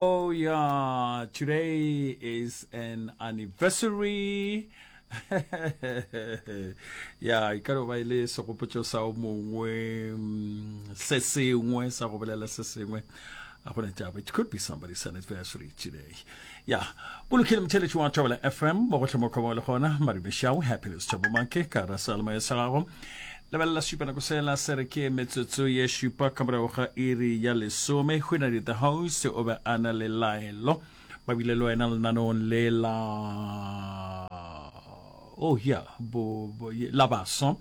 Oh yeah, today is an anniversary. ya e ka no ba e le segopotso sa o mongwe mm, se sengwe sa go bolela se sengwe a gona taba it could be somebody's anniversary today ya o lokile motheletši wa tšabela fm mo gotlhe mo kgoba le gona maribešao happiness tšabomake ka ra salmo e sa gago lebelela šupa nako sela se re ke metsotso ye šupa ka morago ga iri ya lesome go na dita house o be a na le laelo ba bile le wena lenanong le la oh ya la baso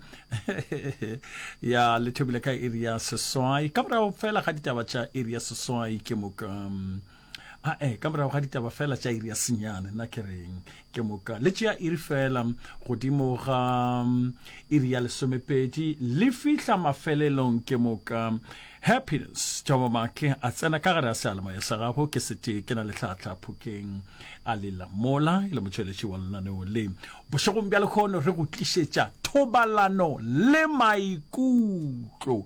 ya le thobile ka iri ya seswai ka morago fela ga ditaba tša iri ya seswai ke moka um, ae ka morago ga ditaba fela tša iri ya senyane nna ke reng ke moka le tšea iri fela godimo ga mm, iri ya lesomepedi le fihla mafelelong ke moka happiness tšomo matle a tsena ka gare a sealemoya sa gago ke sete ke na le tlhatlha phokeng a lela mola e le motšweletši wa lenaneo le bošegong bja lekgono re go tlišetša thobalano le maikutlo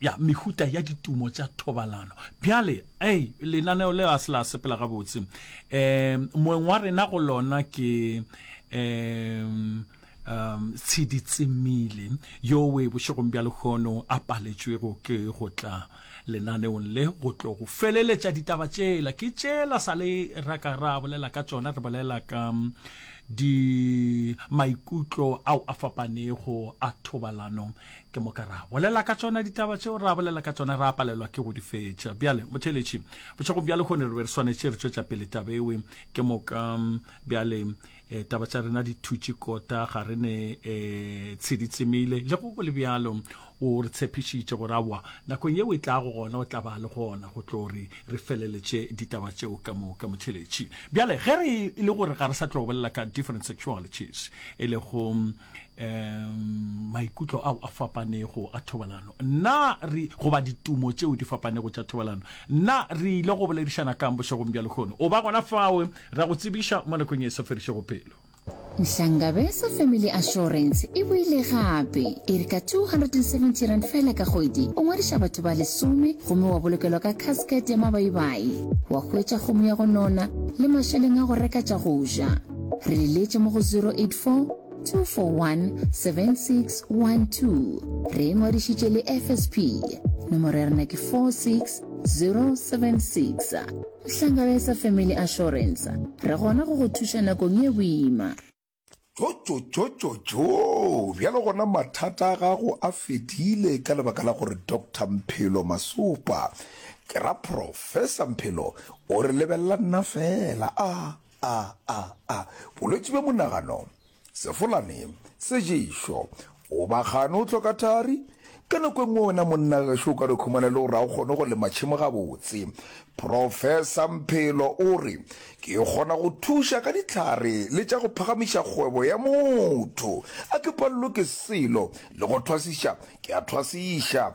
Ya, mehuta ya ditumo tša thobalano. Bjale, ei, lenaneo leo a se la sepela gabotse. Um, moeng wa rena go lona ke, um, um, tshedi tsemile, yo we bošegong bja lehono a paletšwego ke go tla lenaneong le go tlo go feleletša ditaba tšela. Ke tšela sa le ra ka ra bolela ka tšona, re bolela ka um, di maikutlo ao a fapanego a thobalano ke moka ra bolela ka tsona ditaba tseo ra bolela ka tsona ra palelwa ke go di fetša bjale motheletši bošegong bjale kgone re be re swanetše re tšwetša pele taba ewe ke moka mm, bjale eh, taba tša rena di thutše kota ga re ne um eh, tshedi tsemile le go go le bjalo o re tshepišitše gore aowa nakong yeo e tlago gona o tla ba le gona go tlo re re feleletše ditaba tšeo ka moka motheletši bjale ge re e le gore ga re sa tlo bolela ka different sexualities e lego mm, um maikutlo ao a fapanego a thobalano nna re goba ditumo tšeo di fapanego tša thobalano nna re ile go boledišana kang bošegong bja lekgono o ba gona fao ra go tsebiša mo nakong e sa ferišego pelo Nhlangabesa Family Assurance e boile gape e re ka 270 rand fela ka kgwedi o ngwadiša batho ba lesome gomme wa bolokelwa ka casket ya mabaibai wa hwetša kgomo ya go nona le mašeleng a go reka tša go ja re le letše mo go 084 241 7612 re ngwadišitše le fsp nomoro ya rena ke 46076 hlangabeng sa family assurance re gona go go thuša nakong ye boima tšotšotšotšotšo bjalo gona mathata a gago a fedile ka lebaka la gore dr mphelo masopa ke ra professor mphelo o re lebelela nna fela a A, a, a, bolwetši bja monagano, sefolane, seješo, goba gane o hloka thari? Ka nako e nngwe wena monna gašo o ka re khumana e le gore ga o kgone go lema tšhemo gabotse. Profesa Mphelo o re, Ke kgona go thuša ka dihlare le tša go phagamiša kgwebo ya motho. A ke palelwe ke selo, le go thwasiša, ke a thwasiša.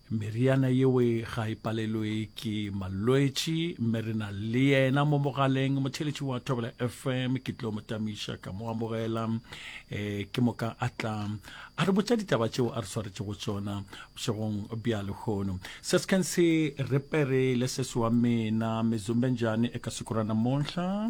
Meriana yeo ga e palelwe ke malwetši mme re na le yena mo mogaleng motheletši wa Thobela FM ke tlo mo tamiša ka mo amogela e ke moka a tla a re botša ditaba tšeo a re swaretšego tsona bošegong bja lehono sesken se repere le sese wa mena mezumbenjani e ka sekorana monhla